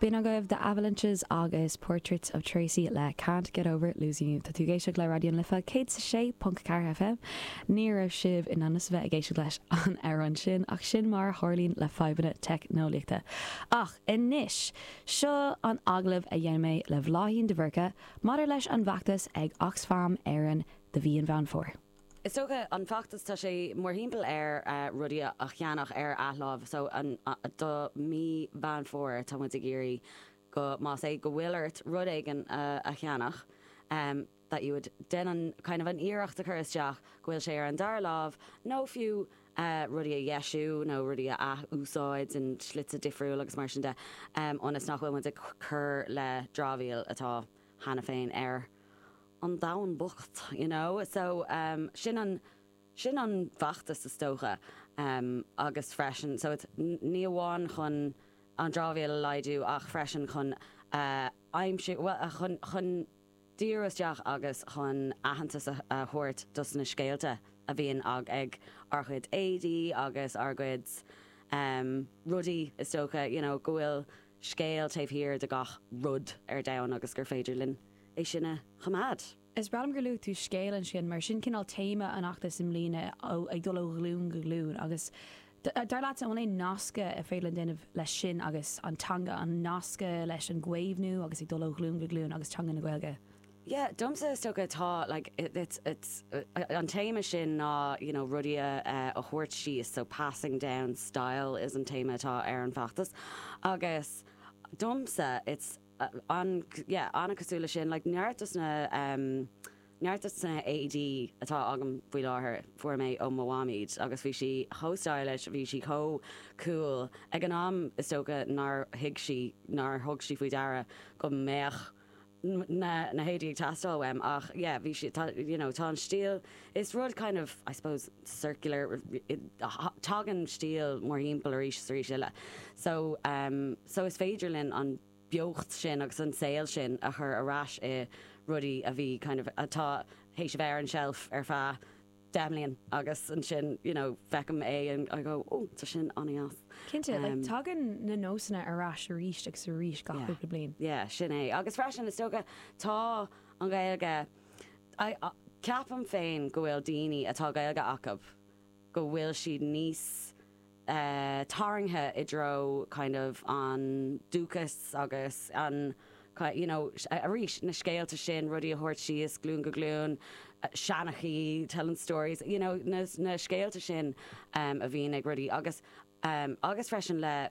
B'in agaibh The Avalanches agus Portraits of Tracey le Can't Get Over Losing You. Tá tú ag éisteacht le Raidió na Life 106.4 FM. Ní raibh sibh in ainm's a bheith ag éisteacht leis an amhrán sin ach sin mar a tharlaíonn le fadhbanna teicneolaíochta. Ach anois, seo an agallamh a dhein mé le Bláithín de Búrca maidir leis an bhfeachtas ag Oxfam Éireann do mhí Mheán Fómhair. Is dócha an feachtas tá sé mórthimpeall ar rudaí a cheannach ar athláimh so do mhí Mheán Fómhair tá muid ag iarraidh go más é go bhfuil ort rud éigin a cheannach that you would déan kind of ah an iarracht a chur isteach go bhfuil sé ar an dara láimh nó fiú rudaí a dheisiú nó rudaí a ath-úsáid in slite difriúil agus mar sin de ionas nach bhfuil muid ag cur le dramhaíl atá cheana féin ar an domhan bocht, you know. So, ehm, sin an, sin an feachtas is dócha. Ehm, agus freisin, so it's, ní amháin chun an dramhaíl a laghdú ach freisin chun a aimsiú, bhuel, a, chun, chun díriú isteach agus chun aitheantas a, a thabhairt dos na scéalta a bhíonn ag, ag ár gcuid éadaí agus ár gcuid, ehm, rudaí is dócha, you know, go bhfuil. scéal taobh thiar de gach rud ar domhan agus gur féidir linn é sin a choimeád. Is breá liom gur luaigh tú scéal ansin mar sin cineál téama an fheachtais i mbliana, ag dul ó ghlúin go glúin agus dar leatsa an bhfuil aon nascadh ar féidir linn déanamh leis sin agus an teanga, an nascadh leis an gcaomhnú agus ag dul ó ghlúin go glúin agus teanga na Gaeilge? Yeah, domsa is dócha tá like it, it's, it's, uh, an téama sin ná you know, rudaí a, uh, a thabhairt síos, so passing down style is an téama atá ar an bhfeachtas agus domsa it's uh, an, yeah, an-chosúil le sin like, neart dos na um, neart dos na héadaí atá agam faoi láthair fuair mé ó mo mham, aight agus bhí sí chomh stylish, bhí sí chomh cool ag an am is dócha nár thuig sí nár thug sí faoi deara go mbeadh na héadaí ag teastáil uaim ach yeah bhí siad tá you know tá an stíl is rud kind of I suppose circular tagann stíl mórthimpeall arís is arís eile so um so is féidir linn an beocht sin agus an saol sin a chur ar ais i rudaí a bhí kind of atá tar éis a bheith ar an tseilf ar feadh 10 mbliana agus ansin you know feicim é and I go oh tá sin an-deas. Cinnte, like tagann na nósanna ar ais arís agus arís gach cúpla bliain. Yeah, sin é. Agus freisin is dócha tá an Ghaeilge, I, ceapaim féin go bhfuil daoine atá Gaeilge acu go bhfuil siad níos tarraingthe i dtreo kind of an dúchas agus an you know arís na scéalta sin, rudaí a thabhairt síos glún go glún, seanchaí telling stories you know na na scéalta sin em a bhíonn ag rudaí agus em agus freisin le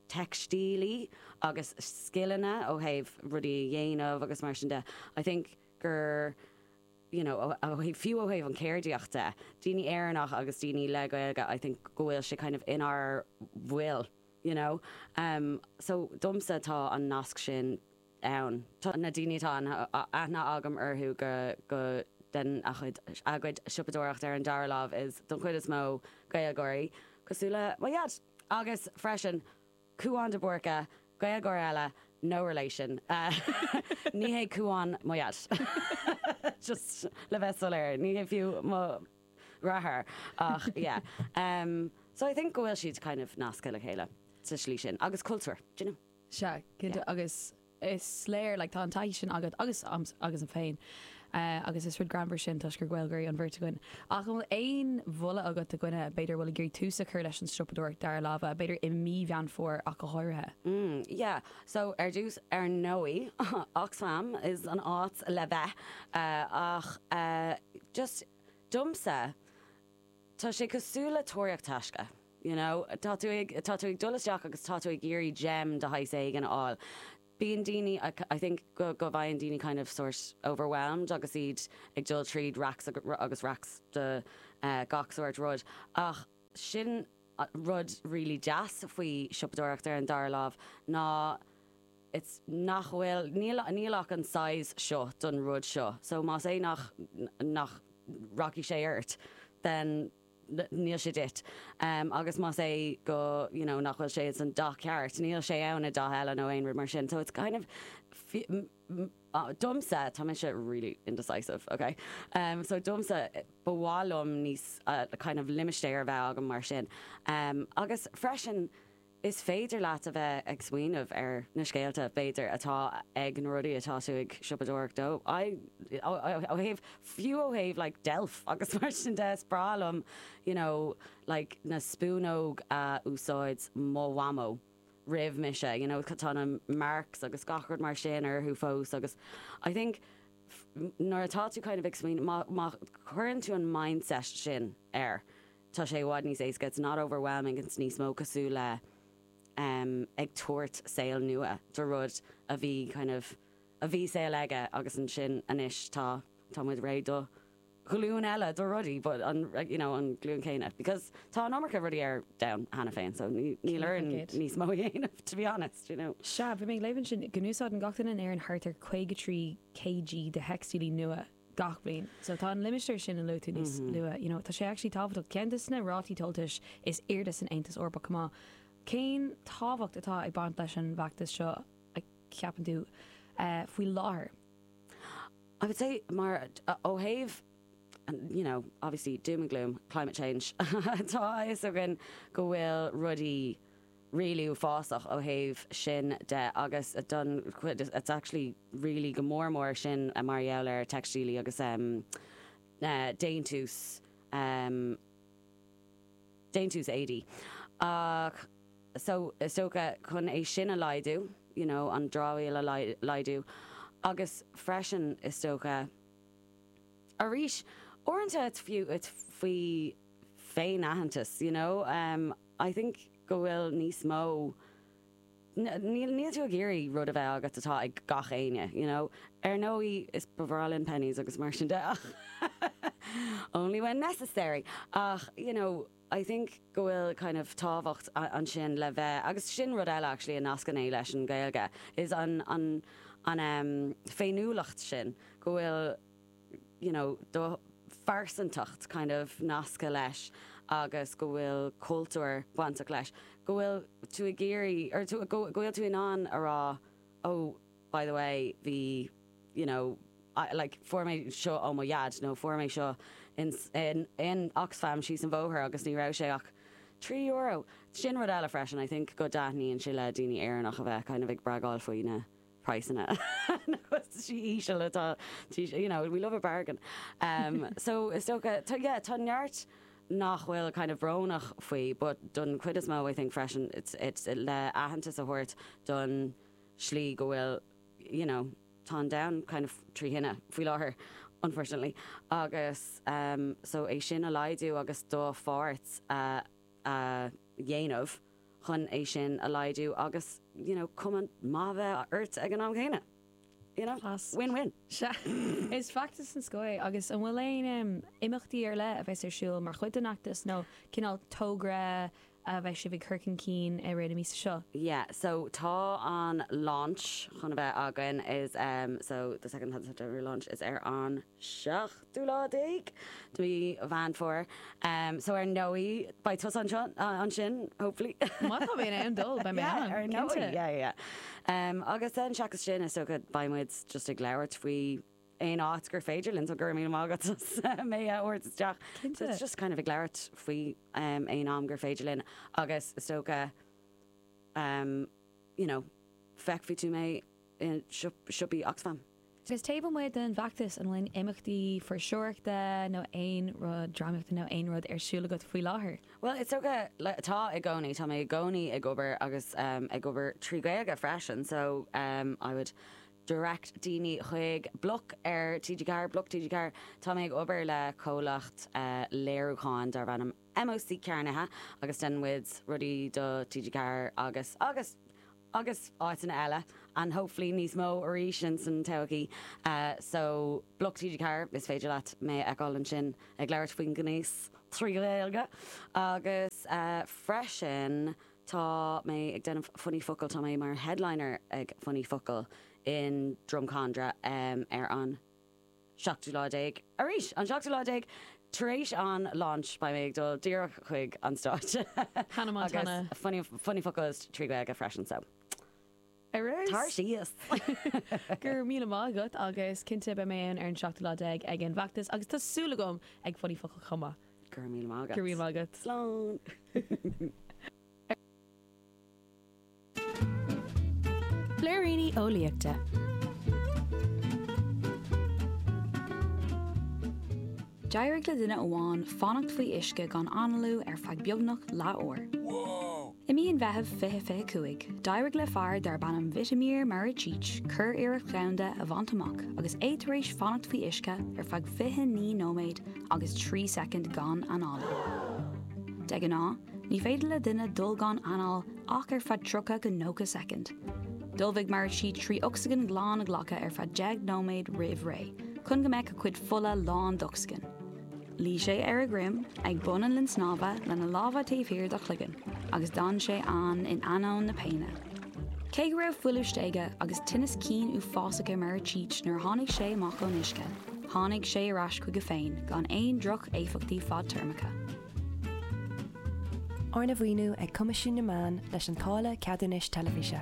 teicstílí agus scileanna ó thaobh rudaí a dhéanamh agus mar sin de. I think gur. you know fiú ó thaobh an chéardaíocht de, daoine Éireannach agus daoine le Gaeilge I think go bhfuil sé kind of inár bhfuil you know em so domsa tá an nasc sin ann. Tá na daoine atá aithne agam orthu go go den a chuid a gcuid siopadóireacht ar an dara láimh is don chuid is mó Gaeilgeoirí cosúil le mo Dhaid agus freisin, Cúán de Búrca, Gaeilgeoir eile, no relation, ní hé Cúán mo Dhaid, just le bheith soiléir, ní hé fiú mo dheartháir ach yeah. So I think go bhfuil siad kind of nasctha le chéile sa slí sin agus cultúr, d'you know? Sea, cinnte agus is léir like tá an taithí sin agat agus agamsa féin agus is rud greannmhar sin toisc gur Gaeilgeoirí an bheirt againn. Ach an bhfuil aon mholadh agat do dhuine, b'fhéidir, a bhfuil ag iarraidh tús a chur leis an siopadóireacht dara láimhe, b'fhéidir i mí Mheán Fómhair ach go háirithe? Mm yeah so ar dtús ar ndóigh Oxfam is an áit le bheith ach just domsa tá sé cosúil le tóraíocht taisce. you know. Tá tú ag, tá tú ag dul isteach agus tá tú ag iarraidh gem de shaghas éigin a fháil. Bíonn daoine, I think go, go bhfaigheann daoine kind of sórt overwhelmed agus iad ag dul tríd racks agus racks de gach sórt rud ach sin rud really deas faoi siopadóireacht ar an dara lámh ná it's, nach bhfuil, níl, níl ach an size seo don rud seo so más é nach, nach rachaidh sé ort then. níl sé duit. Agus más é go, you know, nach bhfuil sé ins an dath ceart, níl sé ann i dath eile nó aon rud mar sin. So it's kind of fi, ah, domsa, tá mise really indecisive, okay? So domsa, ba mhaith liom níos, a kind of limistéar a bheith agam mar sin. Agus freisin. Is féidir leat a bheith ag smaoineamh ar na scéalta, b'fhéidir, atá ag na rudaí atá tú ag siopadóireacht dóibh. I, ó thaobh, fiú ó thaobh like deilf agus mar sin de, is breá liom you know like na spúnóg a úsáid mo mhamó roimh mise you know tá na marks agus gach rud mar sin orthu fós agus I think nuair atá tú kind of ag smaoineamh má cuireann tú an mindset sin air Tá sé i bhfad níos éasca, it's not overwhelming, it's níos mó cosúil le ag tabhairt saol nua do rud a bhí kind of a bhí saol aige agus ansin anois tá tá muid réidh do ghlúin eile de rudaí but an you know an glúin céanna because tá an iomarca rudaí ar domhan cheana féin so níl orainn níos mó a dhéanamh to be honest you know. Sea, bhí mé ag léamh ansin go n-úsáideann gach duine in Éirinn thart ar 53 kg de theicstílí nua. gach bliain. So tá an limistéar sin a luaigh tú níos luaithe, you know, tá sé actually tábhachtach. Ceann de na rátaí tomhaltais is airde san Aontas Eorpach chomh maith. Cén tábhacht atá ag baint leis an bhfeachtas seo, a cheapann tú, faoi láthair? I would say mar ó thaobh you know, obviously doom and gloom, climate change, tá a fhios againn go bhfuil rudaí, really uafásach ó thaobh sin de agus don chuid it's actually really go mór mór sin mar gheall ar theicstílí agus em déantús em déantús éadaí ach so is dócha chun é sin a laghdú you know an dramhaíl a laghdú agus freisin is dócha arís uaireanta it's fiú it's faoi féinaitheantas you know em I think go bhfuil níos mó, níl, níl tú ag iarraidh rud a bheith agat atá ag gach éinne, you know. Ar ndóigh is, ba bhreá linn Penneys agus mar sin de ach only when necessary! Ach, you know, I think go bhfuil kind of tábhacht ansin le bheith, agus sin rud eile actually a nascann é leis an Ghaeilge is an, an, an ehm, féiniúlacht sin go bhfuil, you know, do phearsantacht kind of nasctha leis agus go bhfuil cultúr bainteach leis, go bhfuil tú ag iarraidh, or tú, go bhfuil tú in ann a rá, oh, by the way, bhí, you know, I, like, fuair mé seo ó mo dhaid nó fuair mé seo in, in, in Oxfam síos an bóthar agus ní raibh sé ach trí euro. Sin rud eile freisin, I think, go dtaitníonn sé le daoine Éireannach a bheith kind of ag bragáil faoi na, praghsanna na gcostaisí íseal atá you know we love a bargain em so is dócha tá yeah tá neart nach bhfuil kind of brónach faoi but don chuid is mó I think freisin it's it's le aitheantas a thabhairt don slí go bhfuil you know tá an domhan kind of trí thine faoi láthair unfortunately agus em so é sin a laghdú agus do pháirt a a dhéanamh chun é sin a laghdú agus you know cuma maith a bheith ort ag an am chéanna. You know? Class. Win win. Sea, is feachtas den scoth é agus an bhfuil aon imeachtaí ar leith a bheas ar siúl mar chuid den fheachtas nó cineál togra a bheidh sibh ag cur chun cinn i rith na míosa seo? Yeah, so tá an launch chun a bheith againn um so the Second Hand September launch is ar an seachtú lá déag de mhí Mheán Fómhair so ar ndóigh beidh tusa anseo ansin hopefully. má tá mé in ann dul beidh mé ann yeah ar ndóigh yeah yeah yeah agus then seachas sin is dócha beidh muid just ag labhairt faoi aon áit gur féidir linn so go raibh míle maith agat mé a thabhairt isteach so it's just kind of ag labhairt faoi um, aon am gur féidir linn agus is dócha um, you know feicfidh tú mé siopaí Oxfam. Agus taobh amuigh den bhfeachtas, an bhfuil imeachtaí fuirseoireachta nó aon rud, drámaíochta nó aon rud, ar siúl agat faoi láthair? Bhuel, is dócha, tá i gcónaí. Tá mé i gcónaí ag obair agus ag obair trí Ghaeilge freisin so I would direct daoine chuig bloc ar TG4, bloc TG4. Tá mé ag obair le comhlacht léiriúcháin darb ainm MOC Cearnaithe agus deineann muid rudaí do TG4 agus, agus agus áiteanna eile, and hopefully níos mó arís ins an todhchaí. So, bloc TG4, is féidir leat mé a fheiceáil ansin ag labhairt faoi ghnéas trí Ghaeilge. Agus freisin tá mé ag déanamh Funny Focal, tá mé mar headliner ag Funny Focal in Drumcondra ar an. seachtú lá déag. Arís, an seachtú lá déag tar éis an launch, beidh mé ag dul díreach chuig an stáitse. Hannah Montana. Agus funny focal is trí Gaeilge freisin, so Ar ais. Tar síos. Go raibh míle maith agat agus cinnte beidh mé ann ar an seachtú lá déag ag an bhfeachtas agus tá súil agam ag funny focal chomh maith. Go raibh míle maith agat. Go raibh míle maith agat. Slán. Blúiríní Eolaíochta. D'éirigh le duine amháin fanacht faoi uisce gan analú ar feadh beagnach leathuair. I mí an Mheithimh 2025, d'éirigh le fear darb ainm Vitomir Maricic curiarracht dhomhanda a bhaint amach agus é tar éis fanacht faoi uisce ar feadh 29 nóiméad agus 3 soicind gan análú. De ghnáth, Ní féidir le duine dul gan anáil ach ar feadh 30 go 90 soicind. D'ullmhaigh Maricic trí ocsaigin glan a ghlacadh ar feadh deich nóiméad roimh ré, chun go mbeadh a chuid fola lán d'ocsaigin. Luigh sé ar a dhroim ag bun an linn snámha lena lámha taobh thiar dá chloigeann agus d'fhan sé ann in ainneoin na péine. Cé go raibh fuiliú stéige agus tinneas cinn uafásach ar Maricic nuair a tháinig sé amach ón uisce, tháinig sé ar ais chuige féin gan aon droch-éifeachtaí fadtéarmacha. Arna mhaoiniú ag Coimisiún na Meán leis an táille ceadúnais teilifíse.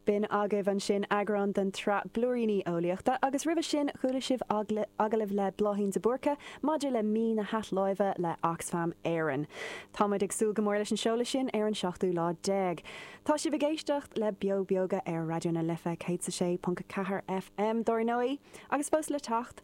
B'in agaibh ansin eagrán den tsraith Blúiríní Eolaíochta agus roimhe sin chuala sibh agallamh le Bláithín de Búrca maidir le Mí na hAthláimhe le Oxfam Éireann. Táimid ag súil go mór leis an seoladh sin ar an seachtú lá déag. Tá sibh ag éisteacht le Beo Beoga ar Raidió na Life 106.4 FM, dar ndóigh, agus fós le teacht.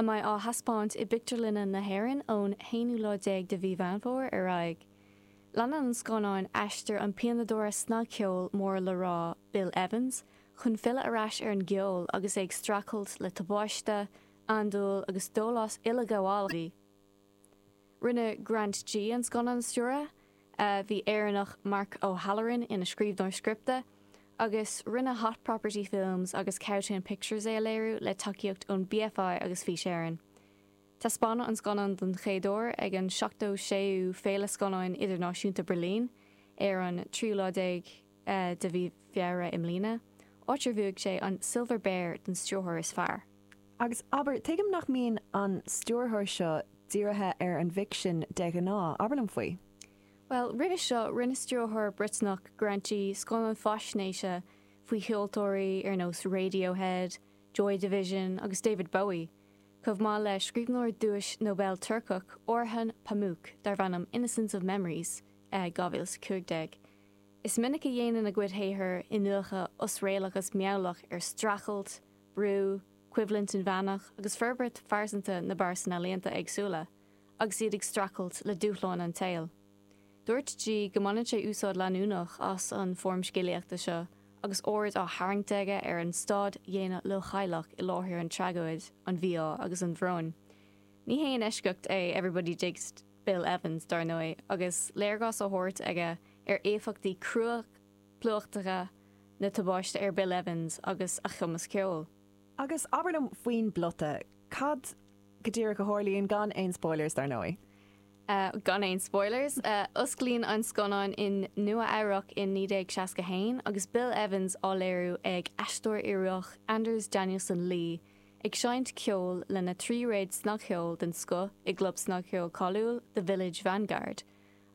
a mbeidh á thaispeáint i bpictiúrlanna na hÉireann ón haonú lá déag de mhí Mheán Fómhair ar aghaidh. Leanann an scannán aistear an pianadóra snagcheoil mór le rá Bill Evans chun filleadh ar ais ar an gceol agus é ag streachailt le tubáiste, andúil agus dólás uileghabhálach. Rinne Grant Gee an scannán a stiúradh, bhí Éireannach, Mark O'Halloran, ina scríbhneoir scripte, agus rinne Hot Property Films agus Cowtown Pictures é a léiriú le tacaíocht ón BFI agus Fís Éireann. Taispeánadh an scannán don chéad uair ag an 76ú Féile Scannáin Idirnáisiúnta Berlin ar an tríú lá déag, de mhí Feabhra i mbliana, áit ar bhuaigh sé an Silver Bear don Stiúrthóir is Fearr. Agus, abair, tuigim nach mbíonn an stiúrthóir seo dírithe ar an bhficsean de ghnáth. Abair liom faoi. Bhuel, roimhe seo, rinne stiúrthóir Briotanach, Grant Gee, scannán faisnéise faoi cheoltóirí ar nós Radiohead, Joy Division agus David Bowie, chomh maith le scríbhneoir duais Nobel Turcach, Orhan Pamuk, darb ainm Innocence of Memories, 2015. Is minic a dhéanann a chuid saothar iniúchadh osréalach agus meabhlach ar streachailt, brú, coimhlint inmheánach agus forbairt phearsanta na bpearsan ealaíonta éagsúla agus iad ag streachailt le dúshláin an tsaoil. Dúirt Gee go mbaineann sé úsáid leanúnach as an foirm scéalaíochta seo agus aird á tharraingt aige ar an stáid dhaonna leochaileach i láthair an tragóid, an mhí-ádh agus an bhróin. Ní haon eisceacht é Everybody Digs. Bill Evans, dar ndóigh, agus léargas á thabhairt aige ar éifeachtaí crua plúchtacha na tubáiste ar Bill Evans agus a chumas ceoil. Agus abair liom faoin bplota. Cad go díreach a tharlaíonn, gan aon spoilers, dar ndóigh? Gan aon spoilers. Osclaíonn an scannán in Nua-Eabhrac in 1961 agus Bill Evans á léiriú ag aisteoir Ioruach Anders Danielsen Lie ag seinnt ceoil lena tríréad snagcheoil den scoth i gclub snagcheoil cáiliúil The Village Vanguard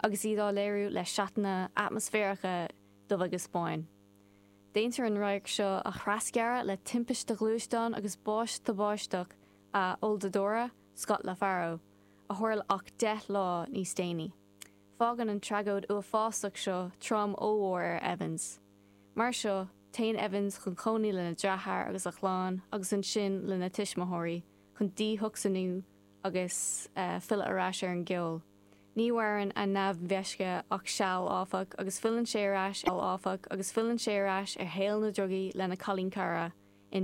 agus iad á léiriú le seatanna atmaisféaracha dubh agus bán. Déantar an radharc seo a thrasghearradh le timpiste ghluaisteáin agus bás tubáisteach a olldordadóra, Scott LaFaro, a tharla ach deich lá níos déanaí. Fágann an tragóid uafásach seo trom ollmhór ar Evans. Mar seo, téann Evans chun cónaí lena dheartháir agus a chlann agus ansin lena tuismitheoirí chun díthocsainiú agus filleadh ar ais ar an gceol. Ní mhaireann a neamh-mheisce ach seal áfach agus filleann sé ar ais ar shaol na drugaí lena chailín cara in New York.